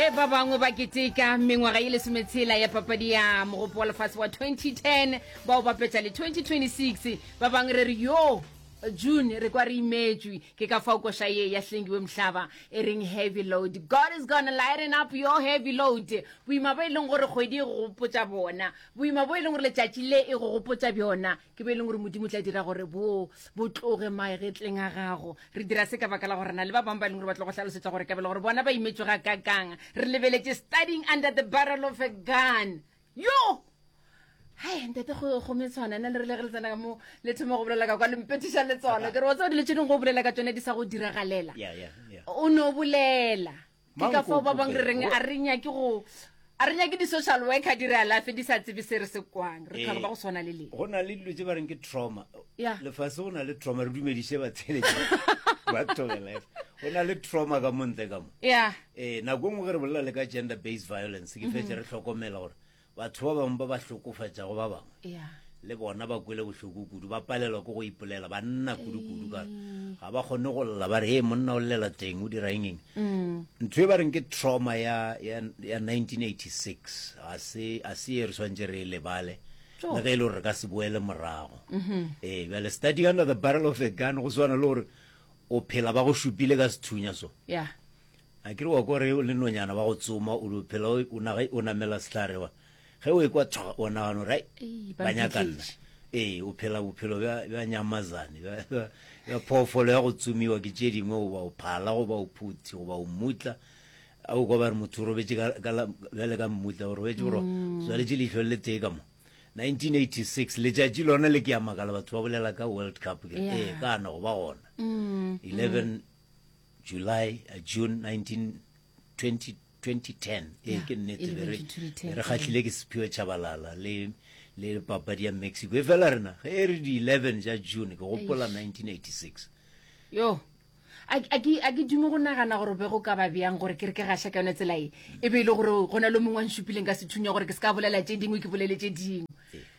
ge ba bangwe ba keteka mengwaga ye lesometshela ya papadi ya mogopo wa lefatshe wa 2010 bao ba petša le 2026 ba bangwe re re yo june re kwa re imetswe ke ka fao koša ye ya hlengiwe mohlaba e reng heavy load god is gonna lighten up your heavy load boima bo e leng gore kgwedi e go gopotsa bona boima bo e leng gore letšatši le e go gopotsa bjona ke be e leng gore modimo o tla dira gore bo bo tloge maegetleng a gago re dira se ka baka la gore na le ba bangwe ba e leng gore ba tlo go hlalosetsa gore kabele gore bona ba imetswe ga kakang re lebeletse studying under the barrel of a gun yo hai ntate gome tshwana na le re le re le tsena ka mo le thoma go bolela ka kwa lempetiša le tsona ke re wa tseo dilo tse dingwe go bolela ka tsone di sa go diragalela o ne o bolela ke ka fao ba bang re reng a re nyake go a re nyake di-social worker di re alafe di sa tsebe se re se kwang re tlhaka ba go tshwana le le go na le dilo tse ba reng ke trauma lefase go na le trauma re dumediše batshelete ba togelefa go na le trauma ka montle ka mo ee nako e nngwe ge re bolela le ka gender based violence ke fetse re tlhokomela gore Batho ba bangwe ba ba hlokofatšago ba bangwe le bona ba kwele bohloko kudu, ba palelwa ke go ipolela, ba nna kudu-kudu ka ga ba kgone go lla ba re hee monna o llela teng o dira engeng mm. ntho e ba reng ke trauma ya, ya, ya 1986 ga se a se e re swantse re e lebale le ge e le gore re ka se boele morago mm-hmm. ee bjale starting under the barrel of a gun go swana le gore o phela ba go šupile ka sethunya so yeah. A ke re wa kwa re o le nonyana wa go tsoma o lo phela o ona ge o namela sehlare wa ge o ekwa tshwa o nagana gore ai ba nyaka nna ee o phela bophelo bja bja nyamazane bja bja phoofolo ya go tsomiwa ke tše dingwe goba o phala goba o phuthi goba o mmutla a o kwa ba re motho o robetše ka ka la bjale ka mmutla o robetše gore mm. swaletše leihlo le tee ka mo 1986 letšatši lona le ke ya makala batho ba bolela ka world cup ke ee kana go ba gona 11 mm. mm. July, uh, June 1920, 2010 ee yeah, ke nnete be re kgatlhile ke sephiwe chabalala le le papadi ya mexico e fela rena ge e re di-11 ja june ke gopola 1986 yo a ke dume go nagana gore be go ka ba bjang gore ke re ke gaša ka yone tsela e e be e le gore go na le mongwe wa nsupileng ka sethunya gore ke se ka bolela tše dingwe ke bolele tše dingwe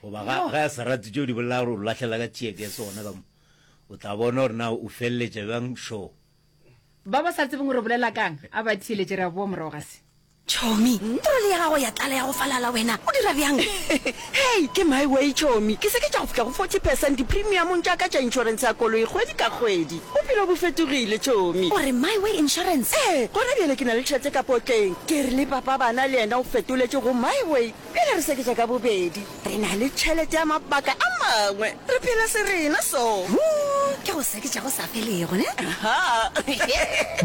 goba ga ya serati tšeo di bolela gore o lahlela ka tšeeke sona ka mo O tla bona gore na o feleletša bjang šo. Ba ba sa tsebeng gore o bolela ka'ng, a ba theeletše, re a boa morago ga se. Chomi, trole ya gago ya tlala ya go falala, wena o dira bjang? Hei, ke my way, Chomi. Ke seketša go fihla go forty percent dipremiumong tša ka tša inšorense ya koloi kgwedi ka kgwedi. Bophelo bo fetogile, Chomi. O re my way insurance? Ee, gona bjale ke na le tšhelete ka potleng. Ke re le papa bana le yena o fetoletše go my way. Pele re seketša ka bobedi, re na le tšhelete ya mabaka a mangwe. Re phela serena so. Wo ke go seketša go sa felego, ne? Aha.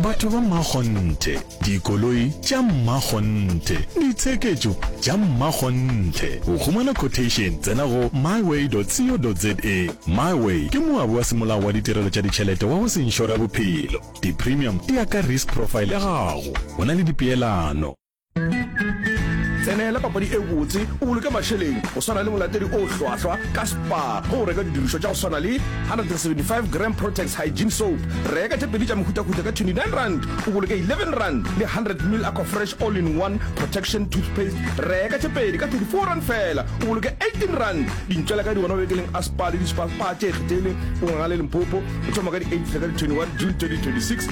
Batho ba mmakgonthe, dikoloi tša mmakgonthe, ditsheketšo tša mmakgonthe. Go humana quotation, tsena go myway.co.za. Myway ke moabi wa semolao wa ditirelo tša ditšhelete wa go se inšore bophelo. Di-premium di ya ka risk profile ya gago. Go na le dipeelano. tsenela papadi e botse o boloke mašeleng go swana le molatedi o hlwahlwa ka spa go o reka didirišwa tša go swana le 175 gram protex hygiene soap reka tše pedi tša mehutahuta ka 29 rand o boloke 11 rand le 100 mil aqua fresh all in one protection toothpaste reka tše pedi ka 34 rand fela o boloke 18 rand dintšwela ka di gona bekeleng a spa le dispa pa tše kgethegileng o ngangale limpopo o thoma ka di 8 fela ka di 21 june 2026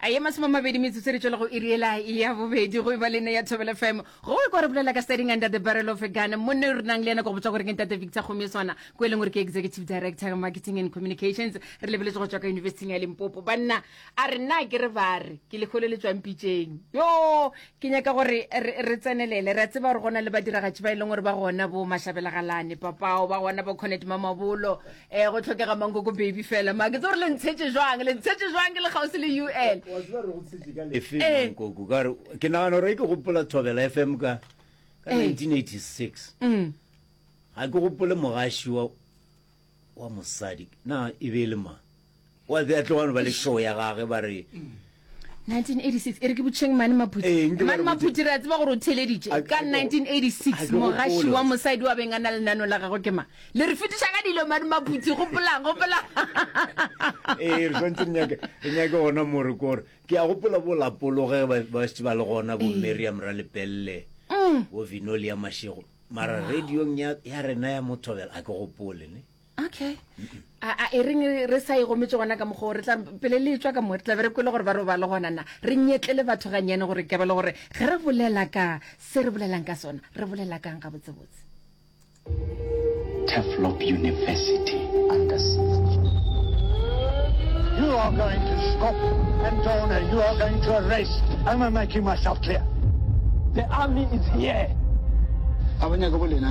A ye masome a mabedi metsotso re tšwela go iri ela ya bobedi go eba le ne ya thobela fm go e kwa re bolela ka studying under the barrel of a gun monne re nang le yena go go botsa gore ke ntate victor gomme swana ko e leng gore ke executive director marketing and communications re lebeletse go tswa ka yunibesithing ya limpopo banna a re nna ke re ba re ke lekgolo le tswang pitšeng yo ke nyaka gore re tsenelele re a tseba gore gona le badiragatši ba e leng gore ba gona bo mashabelagalane papao ba gona bo connect mamabolo eh go tlhokega mankoko baby fela ma ke tse gore le ntshetše jwang le ntshetše jwang ke le kgauswi le ul efe eh. mankoko ka re ke nagana gore ke gopola thobela f m ka ka 1986 eh. mm. ga ke gopole mogaši wa wa mosadi na e be e le mang wa tsea tlo wano ba le show ya gage ba re 1986 e re ke botšheng mane maphuti Ee, nke ba mane re botše. maphuti re a tseba gore o theleditše A- ka a- a- 1986 a- mogaši gopola. wa mosadi wa beng a na lenano la gagwe ke mang le re fetiša ka dilo mane maphuti gopolang gopolang ee re swantse re nyake re nyake gona more kore ke ya gopola bo lapologe ba ba šetse ba le gona bo mariam ra lepelele bo vinoli ya mašego mara radiong ya ya rena ya mothobela a ke gopole ne okay a e reng re sa e gometse gona ka mokgwa re tla pele le tswa ka mo re tla be re kwele gore ba robale gona na re nyetle le batho ga nyane gore ke ba le gore ge re bolela ka se re bolelang ka sona re bolela kang ga botse botse Teflop University under siege You are going to stop and donor you are going to arrest am I making myself clear The army is here Abanya go bolena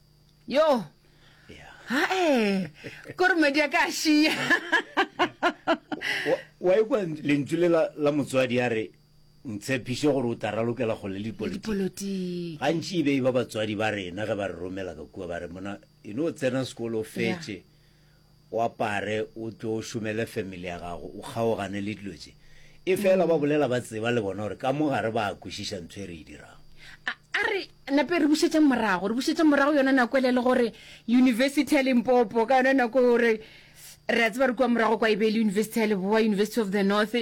yo hae kore madi ya ka a šia wa ekwa lentswe le la motswadi ya re ntshephiše gore o ta ralokela kgole le dipolotiki gantši e be e ba batswadi ba rena ge ba re romela ka kua ba re mona e no tsena sekolo fetse o apare o tlo o šomele family ya gago o kgaogane le dilo tše e fela ba bolela ba tseba le bona gore ka mo gare ba a kwešiša ntho e re e dirago a a re nape re bušetšeng morago re bušetšeng morago yona nako ele le gore university ya limpopo ka yona nako gore re a tseba re kua morago kwa e be e le university ya leboa university of the north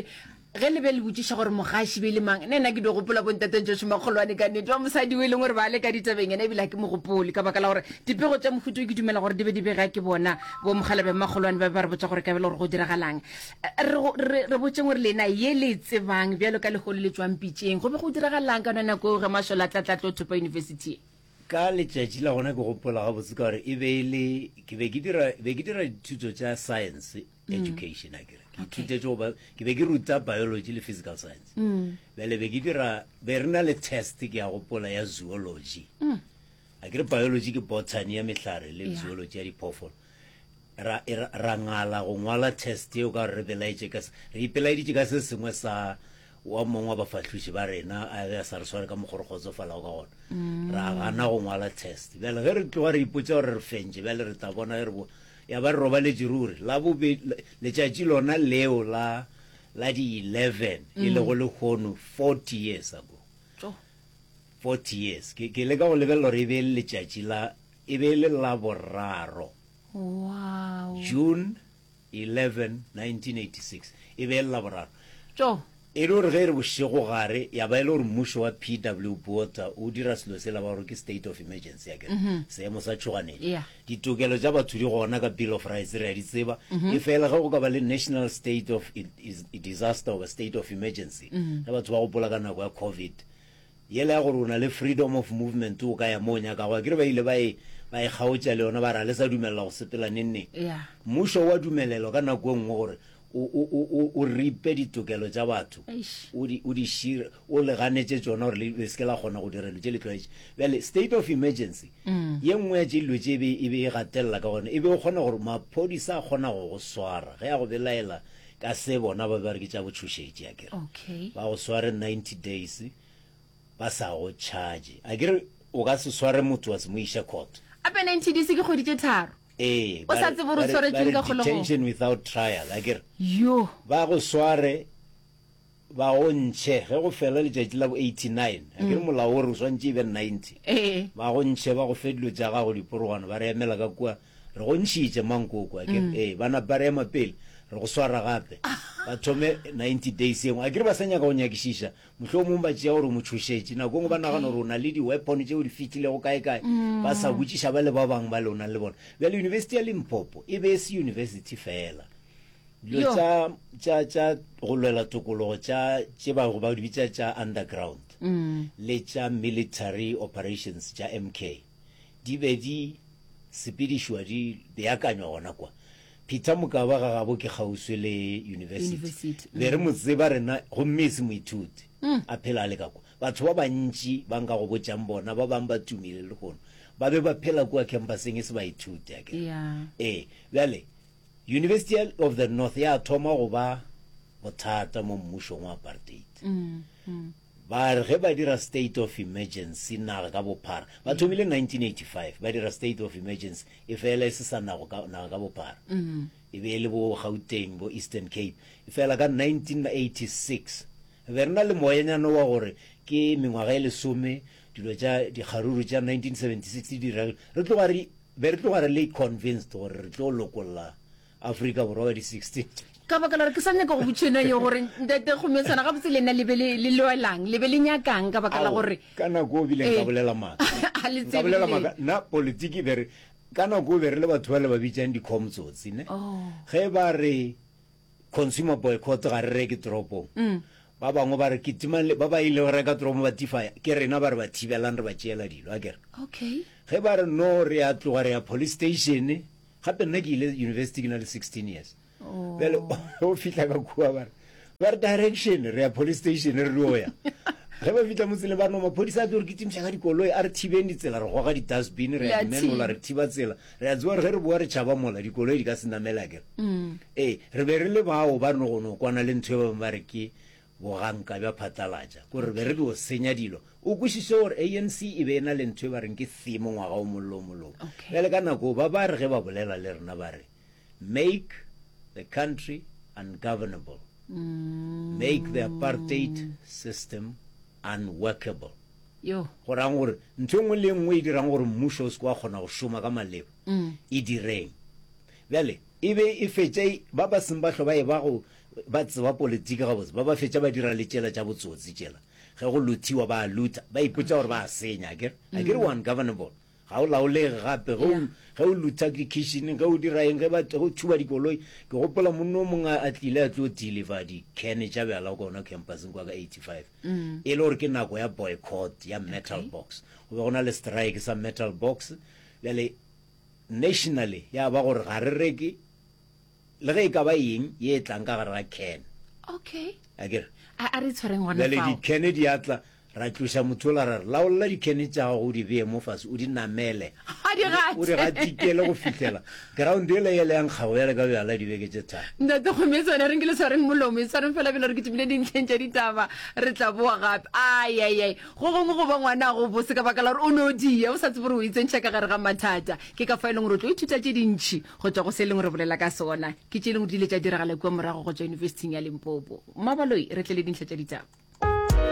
Ge le be le botšiša gore mogaši be e le mang, nna ke dio gopola bontatentšo šoma kgolwane ka nnete ba mosadi o e leng gore ba le ka ditabeng yena ebile ga ke mo gopole ka baka la gore dipego tša mohuta o ke dumela gore di be di bega ke bona bo mokgalabe mmagolwane ba be ba re botša gore ka bele gore go diragalang re re botšeng gore lena ye le e tsebang bjalo ka legolo le tšwang pitšeng go be go diragalang ka yona nako eo ge mašola a tlatlatlo thopa university ye ka letšatši la gona ke gopola gabotse ka gore e be e le ke be ke dira dithuto tša science mm. education a kere ke ithutetse go ba ke be ke ruta biology le physical science mm. bele be ke dira be re na le test ke ya gopola ya zoology mm. a kere biology ke botany ya mehlare le zoology ya diphoofolo ra ra ngala go ngwala test eo ka re belaetse ka re ipelaeditse ka se sengwe sa wa mongwe wa bafahluši ba rena a be a sa re sware ka mokgore kgotsofalago ka gona mm. ra gana go ngwala test bjale ge re tloga re ipotsa gore re fentše bjale re tla bona ge re bo Ya ba re robaletše ruri, Labobe, letšatši lona leo la, la di eleven, e lego lehono forty years ago. Tjo! Forty years. Ke, ke leka go lebelela gore e be e le letšatši la, e be e le Laboraro, Wow! June eleven, nineteen eighty-six, e be e le Laboraro. Tjo! E le gore ge e re bošegogare ya ba e le gore mmušo wa PW Botha o dira selo sela ba gore ke state of emergency akere, seemo sa tšhoganetšo. Ditokelo tša batho di gona ka Bill of Rights re a di tseba, efela ge go ka ba le national state of disaster goba state of emergency, ge batho ba gopola ka nako ya Covid, yela ya gore o na le freedom of movement o ka ya mo o nyakago, akere ba ile ba e ba e kgaotša le yona ba re ga le sa dumelela go sepela neng neng. Mmušo o a dumelelwa ka nako e nngwe gore o, o, o, o, o ripe ditokelo tša batho, Eish. o di, o di šire, o le ganetše tšona gore le, le se ke la kgona go dira dilo tše le tlwaetše. Bjale, state of emergency, ye nngwe ya tše dilo tše e be, e be e gatelela ka gona, e be o kgona gore maphodisa a kgona go go swara ge a go belaela ka se bona ba be ba re ke tša botšhošetši, a ke re, Okay. ba go sware 90 days, ba sa go charge a ke re o ka se sware motho wa se mo iša court. A penalty di se ke kgwedi tše tharo. Ee, O ba sa re- tsebe gore ba o re- swaretsweng ba re ka kgolegong. detention without trial a ke re Yo. ba go sware ba go ntšhe ge go fela letšatši la bo 89 a ke re molao o re o swantše e be 90 Ee. ba go ntšhe ba go fe dilo tša gago diporogwana ba re emela ka kua re go ntšhitše mankoko a ke re ee ba napa re ema pele re go swara gape ba thome 90 days engwe a ke re ba sa nyaka go nyakišiša Mohlomong ba tšea gore o mo tšhošetše. Nako e nngwe ba nagana gore o na le di-weapon tšeo di fihlilego kae-kae, ba sa botšiša ba le ba bangwe ba le o nang le bona. Bjale University ya Limpopo e be e se university feela. Dilo Yo. tša, tša, tša go lwela tokologo tša tše ba ba di bitša tša underground le tša military operations tša MK di be di sepedišwa, di beakanywa gona kwa. Peter Mokaba ga gabo ke kgauswi le yunibesithi. Be re mo tseba rena gomme e se moithuti. A phela a le ka kwa. Batho ba bantši ba nka go botšang bona ba bangwe ba tumile lehono ba be ba phela kua khampaseng e se baithuti, a ke re? Ee. Bjale, University ya of the North ya thoma go ba bothata mo mmušong wa apartheid. Ba re ge ba dira state of emergency naga ka bophara, ba thomile 1985, ba dira state of emergency e fela e se sa nago ka, naga ka bophara. E be e le bo Gauteng, bo Eastern Cape. E fela ka 1986, re be re na le moyanyana wa gore ke mengwaga e lesome, dilo tša dikgaruru tša 1976 di dira, re tloga re, be re tloga re le convinced gore re tlo lokolla Afrika Borwa wa di 16. ka baka la gore ke sa nyaka go botšheno yo gore ntate kgometsana ga botse le nna le be le le loelang le be le nyakang ka baka la Ao, gore ka nako o bile nka Eh. bolela maaka Ha le nka bolela tsebile. maaka nna politiki be re ka nako o be re le batho ba le ba bitsang di-com tsotsi ne Oh. ge ba re consumer boycott ga re reke toropong Mm. ba bangwe ba re ke timang le- ba ba ile go reka toropong ba tifaya ke rena ba re ba thibelang re ba tšeela dilo a kere okay ge ba re no re ya tloga re ya police station gape nna ke ile university ke na le 16 years oh. bjale o fitlha ka kua bare ba re direction re ya police station re dio ya ge ba fitlha motsele ba no maphodisa a tlo re ke timiša ka dikoloi a re thibeng ditsela re goga di-dustbin re ya menola re thiba tsela re ya tsewa re ge re boa re tšhaba mola dikoloi di ka se namela kere mm. ee re be re le bao ba nogono kwana le ntho e ba bangwe ba re ke Boganka bja phatlalatša ko re be re tlo senya dilo. O kwešiše gore ANC e be e na le ntho e ba reng ke theme ngwaga o mollo o mollo wo. Okay. Bjale ka nako ba ba re ge ba bolela le rena ba re make the country ungovernable, make the apartheid system unworkable. Yo. Go rang gore ntho e nngwe le e nngwe e dirang gore mmušo o se ke wa kgona go šoma ka maleba e direng. Bjale e be e fetša e- ba ba seng ba hlo ba e ba go Ba tseba politiki gabotse, ba ba fetša ba dira le tšela tša botsotsi tšela. Ge go luthiwa ba a lutha, ba ipotša gore ba a senya, akere? Akere o ungovernable, ga o laolege gape. Ge o, ge o lutha kitšhineng, ge o dira eng, ge ba, ge o thuba dikoloi. Ke gopola monna o mongwe a, a tlile a tlo deliver di-can tša bjala gona campuseng kwa ka eighty five. E le gore ke nako ya boycott ya Metal Box. Go be go na le strike sa Metal Box. Bjale nationally ya ba gore ga re reke, le ge e ka ba eng ye e tlang ka gare ga can okay a ke re a a re tshwareng gona bjale fao dikene di a tla ra tloša motho ola ra re laolela dikene tša gago o di beye mo fase o di namele ga di o di gate gatikele go fihlela ground ele yele ya nkgago bjale ka bjala dibeke tše tharo ntate kgome tsone re nkele tshwareng molomo e tshwareng fela pele re ke tšimile dintlheng tša ditaba re tla boa gape ayayay go gongwe go ba ngwana go bose ka baka la gore o ne o dia o sa tsebe gore o e tsentšha ka gare ga mathata ke ka fa e leng gore o tlo ithuta tše dintšhi Go tšwa go se e leng re bolela ka sona, ke tše e lego di ile tša diragala kua morago go tšwa Yunibesithing ya Limpopo. Mmabaloi, re tle le dintlha tša ditaba.